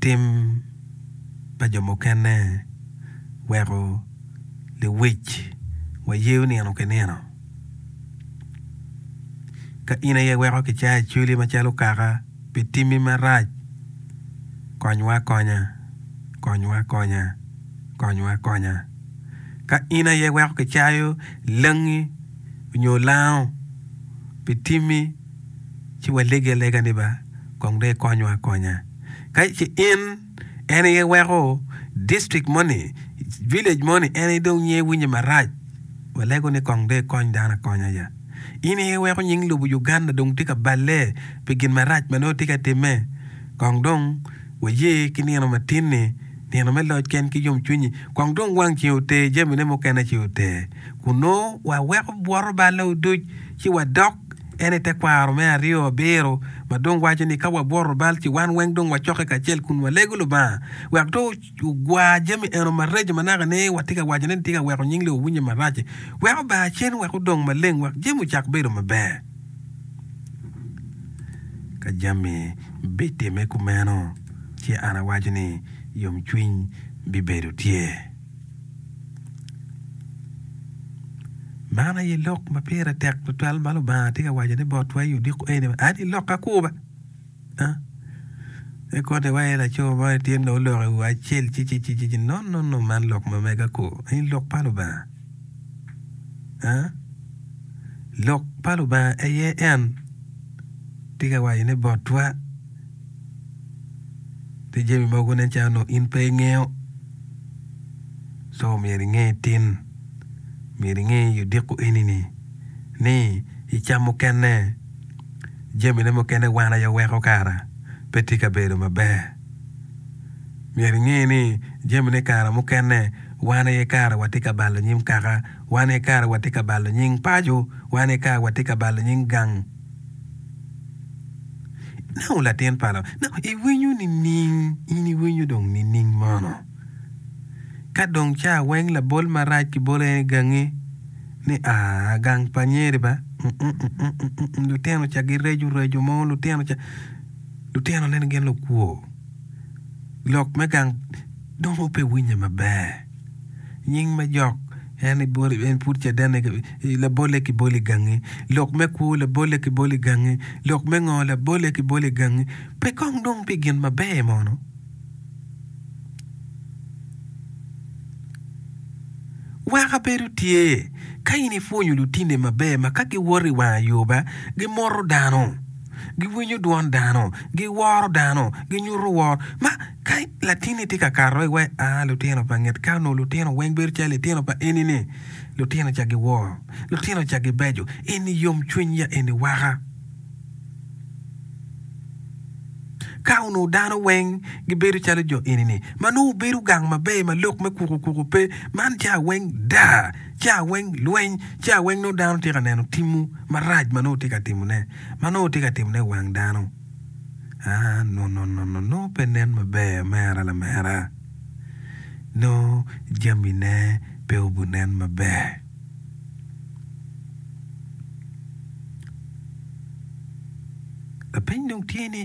tim pa jo mukene weko lewic wayeyo nino ki nino. Ka in aye iweko kicayo i cwili macalo kaka pi timmi marac, konywa akonya, konywa akonya, konywa akonya. Ka in aye iweko kicayo langi nyo lango pi timmi, ci waleggi alega ni ba kong dong ikonywa akonya. Ka ci in en aye weko district moni, village moni en aye dong nyiye winye marac, walego ni kong dong ikony dano akonya ya. In aye iweko nying lobo Uganda dong tye ka balle pi gin marac ma nongo tye ka timme. Kong dong waye ki nino matin-ni, nino me loc ken ki yomcwinyi, kong dong wang ceng oter jamine mukene ci oter, kun nongo waweko bwoto balle oduc ci wadok. En e tekwaro me aryo abiro ma dong waco ni ka wabworo bal ci wan weng dong wacokke kacel kun walego Lubanga wek dong ogwa jami eno mareco ma naka ni watye ka waco ni tye ka weko nying Lok winye marac-ci. Wek obar cen wek odong maleng wek jami ocak bedo maber. Ka jami bitimme kumeno, ci an awaco ni yomcwiny bibedo tye. Man aye lok ma pire tek tutwal ma Lubanga tye ka wacone botwa i odiko eni ni ad ilok akurba pe kotte iwaci laco mo tye nongo oloko i wi acel ci ci ci ci no no no man lok ma mega ko eni lok pa Lubanga lok pa Lubanga aye en tye ka wacone botwa. Pi jami mogo nen calo onongo in pe ingeyo, so myero inge tin, myero inge i odiko eni-ni ni i cam mukene, jamine mukene wan aye weko kara pe tye ka bedo maber. Myero inge ni jamine kare mukene wan aye kara watye ka balo nyim kaka, wan aye kara watye ka balo nying paco, wan aye kara watye ka balo nying gang. Nongo latin pa Lubanga, nongo iwinyo nining? In iwinyo dong nining mono? Ka dong ca weng labol marac kibolo en i gangi ni aa, gang pa nyeri ba, lutino ca gireco reco mo, lutino ca, lutino neno gin lukwo, lok me gang dong pe winye maber. Nying me jok en pud caden Labolle ki boli gangi Lok me kwo Labolle ki boli gangi Lok me ngo Labolle ki boli gangi Pe kong dong pi gin maber mono Wek abedo tye Ka in ipwonyo lutinni maber ma ka giwoto i wang ayoba gimoto dano Giwinyo dwon dano Giworo dano Ginyuto woro ma Ka latinni itye ka kato i wek a lutino pa nget ka onongo lutino weng bedo calo litino pa eni-ni, lutino ca giwor, lutino ca gibeco, eni yomcwiny ya eni waka. Ka onongo dano weng gibedo calo jo eni-ni, ma nongo wubedo gang maber ma lok me kuku kuku pe, man ca weng daa, ca weng lweny, ca weng nongo dano tye ka neno timwu marac ma nongo wutye ka timone, ma nongo wutye ka timone i wang dano. aa, nonononongo pe nen maber amera lamera. Nongo jamine pe obunen maber. Lapeny dong tye ni,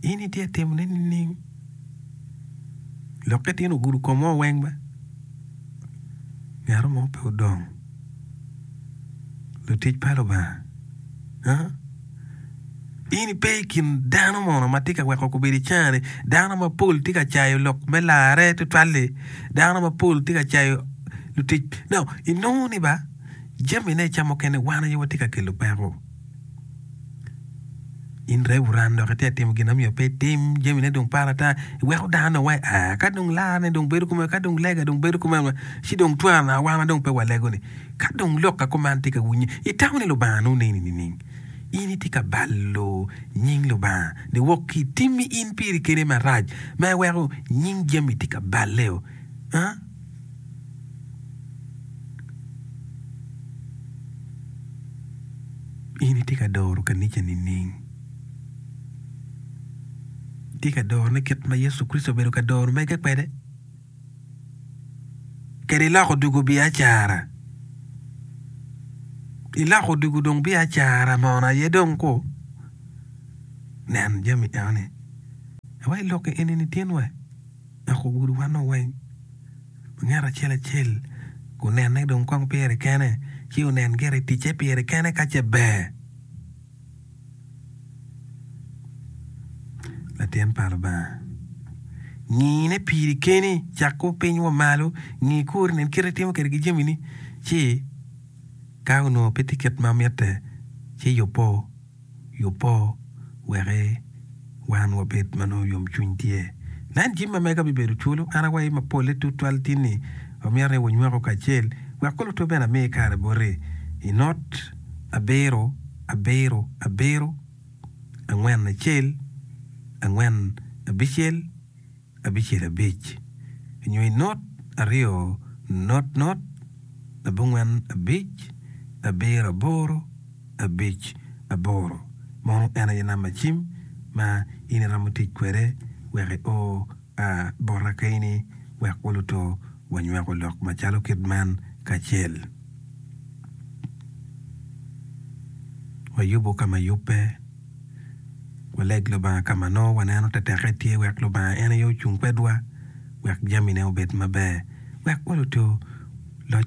in itye ka timone nining? Lokke tin ogudo komeo weng be. Ngero mo pe odong. Lutic pa Lubanga, aa. In ipe i kin dano mono ma tye ka weko kobedo icengani. Dano mapol tye ka cayo lok me larre tutwal-li. Dano mapol tye ka cayo lutic. Now, inongo ni ba jamine ca mukene wan aye watye ka kelo peko. In revuran dok itye ka timo gin ma myero pe itim, jamine dong pat ata, iweko dano dong waci aa, ka dong larre dong bedo kome, ka dong lega dong bedo kome, ci dong twara wan dong pe walego-ni. Ka dong lok a kuman tye ka winye, itamo ni Lubanga nongo neni nining? In itye ka balo nying Lubanga niwok ki i timmi in piri kene marac ma iweko nying jami tye ka balle-o. In itye ka doro kanica nining? Itye ka dorone kit ma Yecu Kricito obedo ka doro mege kwede? kede lok odiko biacara iloko odiko dong biacara mono aye dong ku nen jami enoni wa ilokke enini tyen wa dok ogudo wanwa weng ma ngat acel acel onene dong kong pire kene ci onen gire ticce pire kene ka ce ber Latin pa Lubanga, ngine piri keni, cak kwo piny wa malo, ngi kori, nen kit ma itimo kwede ki jamini, ci ka onongo pe tye kit ma mitte, ci yubbo, yubbo weki wan wabed ma nongo yomcwiny tye. Nen jami ma mega bibedo culu, an awayi ma polle tutwal tin ni amito ni wunywako kacel, wek kulu twubene ami kare boti. I not abiro. Abiro, abiro, angwen acel, angwen abicel, abicel abic, nyo i not aryo not not, abongwen abic, abiro aboro, abic aboro. Mono en aye namba cim ma in iromo tic kwede wek i o. A Bota kaini wek waluto wanyweko lok macalo kit man kacel. Wayubo ka ma yubbe. Waleg Lubanga ka ma nongo waneno teteke tye wek Lubanga en aye ocung kwedwa wek jamine obed maber wek waluto loc.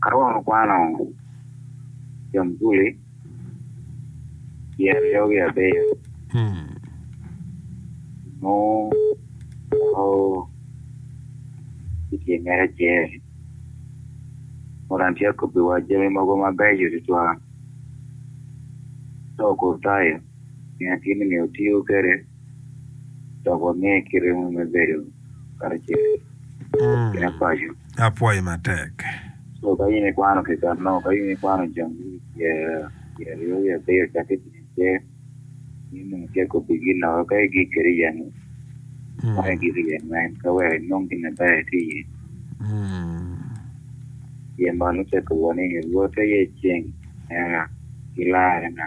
Aromo kwano jamguli tyen yogi abiyo mo ma i tyengera acel. Modo an atye ka kobbiwa jami mogo mabeco tutwal. Dok otayo nino kit ni myero otiyo kwede. dok wange kite mo me bedo karacel ki na paco. Apwoyi matek. So ka in ikwano keken no, ka in ikwano jang me pye pye aryo ki abiyo cakke ki ice, in dong icek kobbi gin loko ka igik kede iye-ni, kong igik iye man ka wek inong gin na ber ki iye. Pien man ocek kobwa ni Rwot aye ceng mera ki larrena.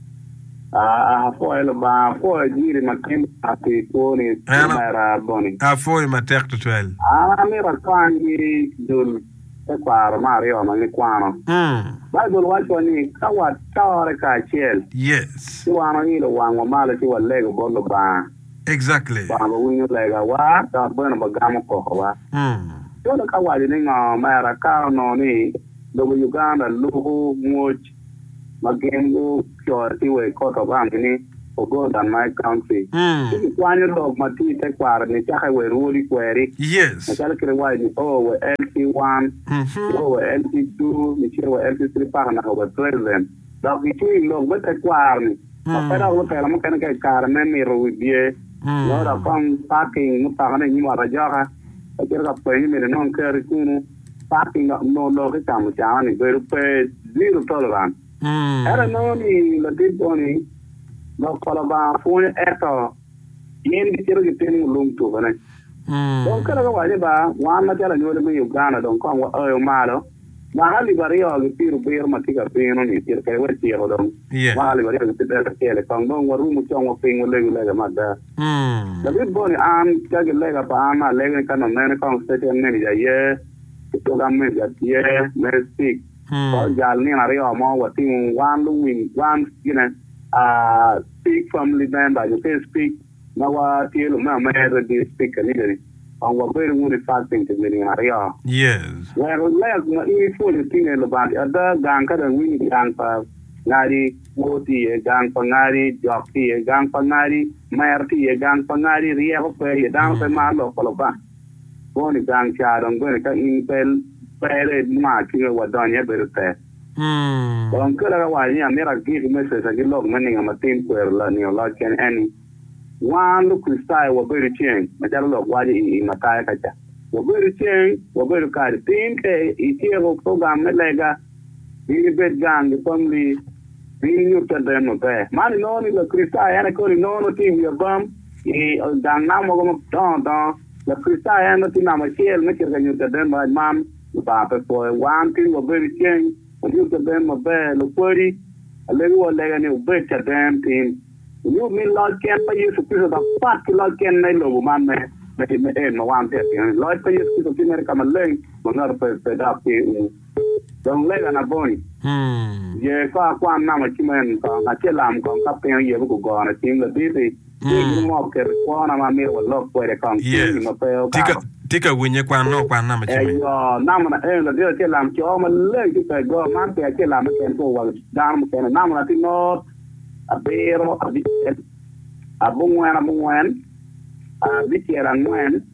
Ah, ah, apwoyo Lubanga, apwoyo giri ma tin aa pi kwoni, En omera boni. apwoyi matek tutwal. An amito atwang ki dul tekwaro me aryo ma gikwano. Mm. Baibul wacciwa ni ka watore kacel, Yes. ci wan wailo wangwa malo ci walego bot Lubanga, Exactly. Lubanga bene winyo legawa dok bene obigamo kokowa. Mm. Calo ka waco ni ngo, omera ka onongo ni lobo Uganda luku mwoc, ma gin gucoro ki wa i Court of Arms ni ogo dan my country. Ci kikwanyo lok ma tye i tekwaro-ni cake wa i Rwodi Kweri, macalo kit iwaco ni O wa LC 1, O wa LC 2, niciro wa LC 3 paka naka wa President. Dok gicweyo i lok me tekwaro-ni ma pe dok lutela mukene ka i kare me mito wibye nyo dok kong parking mutoka-ne i nyim ot ajoka, kacito ka pweny ni myero inong keri kunu. Party nongo lok ki ka mucana ni bedo pe zero tolerance. Ento inongo ni latit moni lok pa Lubanga pwonyo eto gin gicito gitimo lung tukene. Dong kelo ka waco ni ba wan macalo anywali me Uganda dong kong waoyo malo mwaka alip aryo gi pyerubiro ma tye ka bino ni cito kede waciko dong mwaka alip aryo gi pyerabicel kong dong warumu cong wa piny walegu lega me ada. David boni an, ka ki lega pa an alega ni ka nongo mene kong Station Manager aye, ki Program Manager tye, me Speak, pa ojal nino aryo mo watingo wan luwiny, wan gine, aah, Speak Family Member nyo ki Speak ma wa tye lumeo me Radio Speak kaniga ni, kong wabedo wunu i Fasting pi mi nino aryo, wek lega ma in ipwonyo tine lubati ada gang ka dong iwinyo dyang pa ngadi. Kwo tye iye, gang pa ngari, jok tye iye, gang pa ngari, mer tye iye, gang pa ngari, ryeko pe iye. Dano pe maro lok pa Lubanga. Kwo ni gang ca dong bene ka in pe pere nwa ki me wadony aye bedo tek. Dong kela ka waco ni amito agik me Cca ki lok me ninga matin kwero nino loc kene en ni, wan Lukricitayo wabedo ceng macalo lok waco i Mataya ka ca. Wabedo ceng, wabedo kare tin ka ityeko purogam me lega. Ring ibed gang i kom rii. Ring inyut caden maber. Man inongo ni Lakricitayo en aye koni nongo nongo tye i wi abam i gang namo mogo madongo dongo. Lakricitayo en nongo tye namba acel me cito ka nyuto caden marac man Lubanga pe pwoyo. Wan kit ma wabedo ceng wanyut caden maber. Lukwodi, alegiwa lega ni wubed caden tin. Wunyut ni loc ken ma Yecu Kricito dok pat ki loc ken ma i lobo man me en ma wan watye ka tino-ni. Loc pa Yecu Kricito tye mere ka maleng ma ngato pe dok ki umo. Dong lega na boni? Ye ko akwan namo cimen kong, ace lam kong ka piny oyebe gugona cing laditi, ni in omok keto kwona ma amito walok kwede kong cing-nyi ma pe okato. Tika winye kwan nongo kwan namo cimen? Eyo, namo na eno ladit ace lam co maleng ki ka i go man pe ace lamme kene pe wa dano mukene, namo na ti not, abiro, abicel, abongwen abongwen, abicel angwen,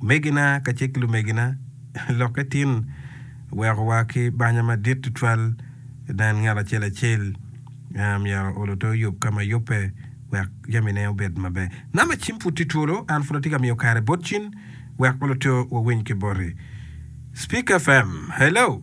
Omegina kacel ki lumegina, lokke tin wekowa ki banya madit tutwal. Nen ngat acel acel myero olo te oyub ka ma yubbe wek jamine obed maber. Namba cim pud tye twolo, an pud atye ka miyo kare bot cin wek olo te wawiny ki boti. Speak FM, hello!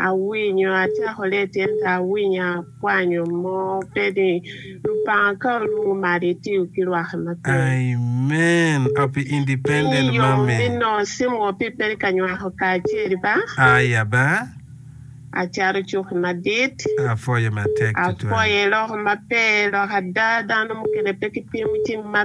Awinyo acako leti ento awinyo akwanyo mo pe ni lupanga ka olungu malo itiyo ki rwaki maber. Amen happy independent mommy. Inge yom ni nongo simu wa pi peri ka nywako kacel ba. Aya ba. Acato cuki madit. Apwoyo matek tutwal. Apwoyo iloko maber lok ada dano mukene pe ki pimo cing ma.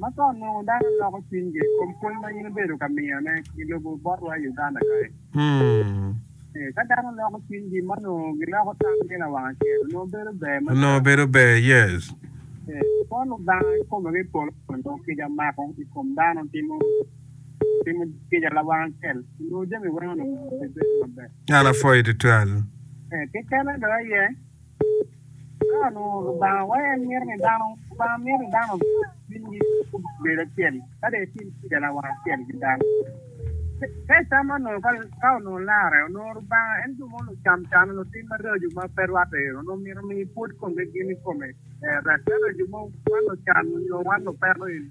Ma ka onongo dano loko cwinygi i kom pwony ma in ibedo ka miyone i lobo botwa i Uganda kany, ka dano loko cwinygi ma onongo giloko tamgi lawang acel, onongo bedo ber mada. Onongo bedo ber, yes. Kwo Lubanga kikome ki i polo ni onongo kica mako i kom dano timo kica lawang acel, onongo jami weng onongo bibedo maber. An apwoyi tutwal. Kekene dong aye. Ka onongo Lubanga waco en mito ni dano, Lubanga mito ni dano cwinygi obed acel ka dong etim kica lawang acel ki dano. Ka icamo onongo ka ka onongo larre, onongo Lubanga en jo mo lucam cam, lutim maraco ma pe rwatte eno onongo myero omi pwod komgi gin i kome. Rak ka jo mo wan lucam nyo wan lupeto eni.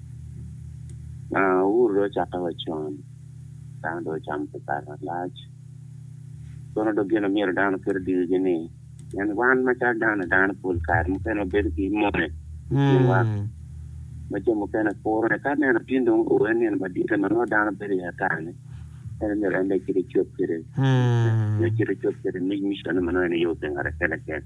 Ur dong ocakke wa con, dano dong ocamo pi kare malac. Kono dong gin ma myero dano oket i dyewigi ni, pien wan macalo dano dano pol kare mukene wabedo ki mone i kinwa ma jo mukene purone. Ka neno gin dong oye nino madite ma nongo dano bedo iye atani, meno myero en dong ecit ecob kwede nyo ecit ecob kwede mic miconne ma nongo en aye opingere kene kene.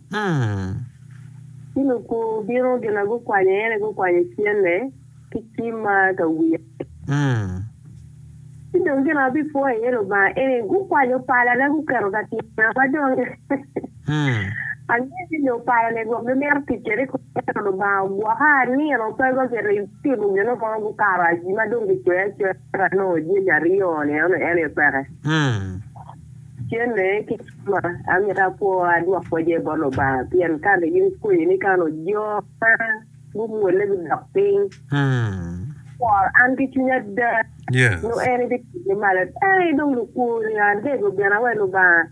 Ci lukwu bino gina gukwanyo en, gukwanyo cente ki cimma ka wiya. Ci dong gin abipwoyo iye Lubanga eni, gukwanyo palana guketo ka tyena, ma dong angeyo ni nyo pala-ni gwok gimito tic kwede kong, ento Lubanga ogwoka, anino pe ba gitimo gin mo, gukato aji ma dong gicwee acoya. Eka anongo jami aryo-ni ento en aye peke. Cente ki kema amito apwo adwok kwece bot Lubanga pien kare gin kweyo ni kano jo ma gumwolle gudok piny. Aworo an ki cwiny ada nyo en ibitinge malo. Ee, dong lukworni adego gin awe Lubanga.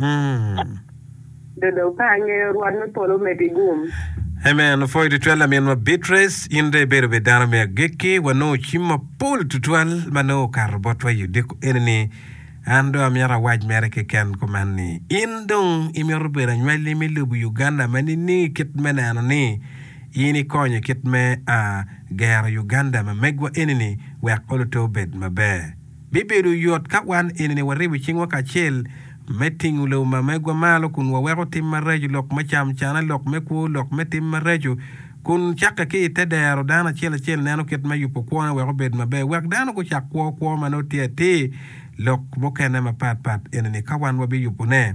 Amen. Dodo ka angeyo Rwot me polo omedi gum. Amen opwoyo tutwal laminwa Beatrice, in dong ibedo bed dano me agikki, wanongo cim mapol tutwal ma nongo okato botwa i odiko eni ni, an dong amyero awac mere keken kuman ni, in dong imito bedo anywali me lobo Uganda ma niningi kit me neno ni in ikonyo i kit me a gero Uganda ma megwa eni ni wek oluto obed maber. Bibedo yot ka wan enini waribo cingwa kacel me tingo lobo ma megwa malo kun waweko tim maraco, lok me cam cane, lok me kwo, lok me tim maraco, kun cakke ki i te dero dano acel acel neno kit me yubo kwone wek obed maber wek dano gucak kwo kwo ma nongo tye atir. Lok mukene mapat pat enini ka wan wabiyubo ne,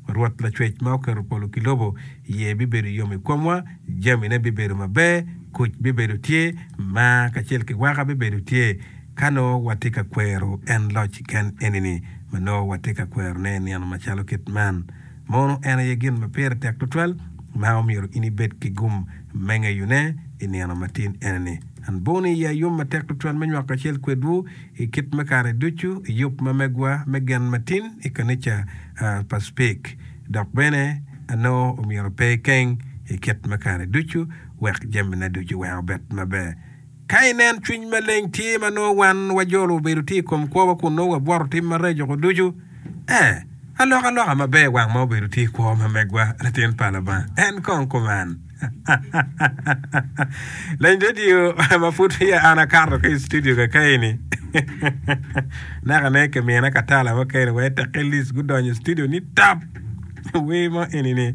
Rwot Lacwec ma oketo polo ki lobo iye bibedo yom i komwa, jamine bibedo maber, kuc bibedo tye, mar kacel ki waka bibedo tye. Ka nongo watye ka kwero en loc kiken eni-ni ma nongo watye ka kwerone i nino macalo kit man, mono en aye gin ma pire tek tutwal ma omyero in ibed ki gum me ngeyone i nino matin eni-ni. An buni i ya yom matek tutwal me nywako kacel kwedwu i kit me kare ducu i yub ma megwa me gen matin i kanica pa Speke. Dok bene anongo omyero ape keng i kit me kare ducu wek jamina ducu wek obed maber. Ka inen cwiny maleng tye ma nongo wan wajolo obedo tye i kom kwowa kun nongo wabworo tim mareco-gu ducu, ee, alokaloka maber wang ma obedo tye i kwo ma megwa, latin pa Lubanga. En kong kuman. Leny redio ma pud peya an akato ki i studio kakei-ni, nakane kimina katala mukene wa i Tekillis gudonyo i studio ni tap! Wer mo eni-ni.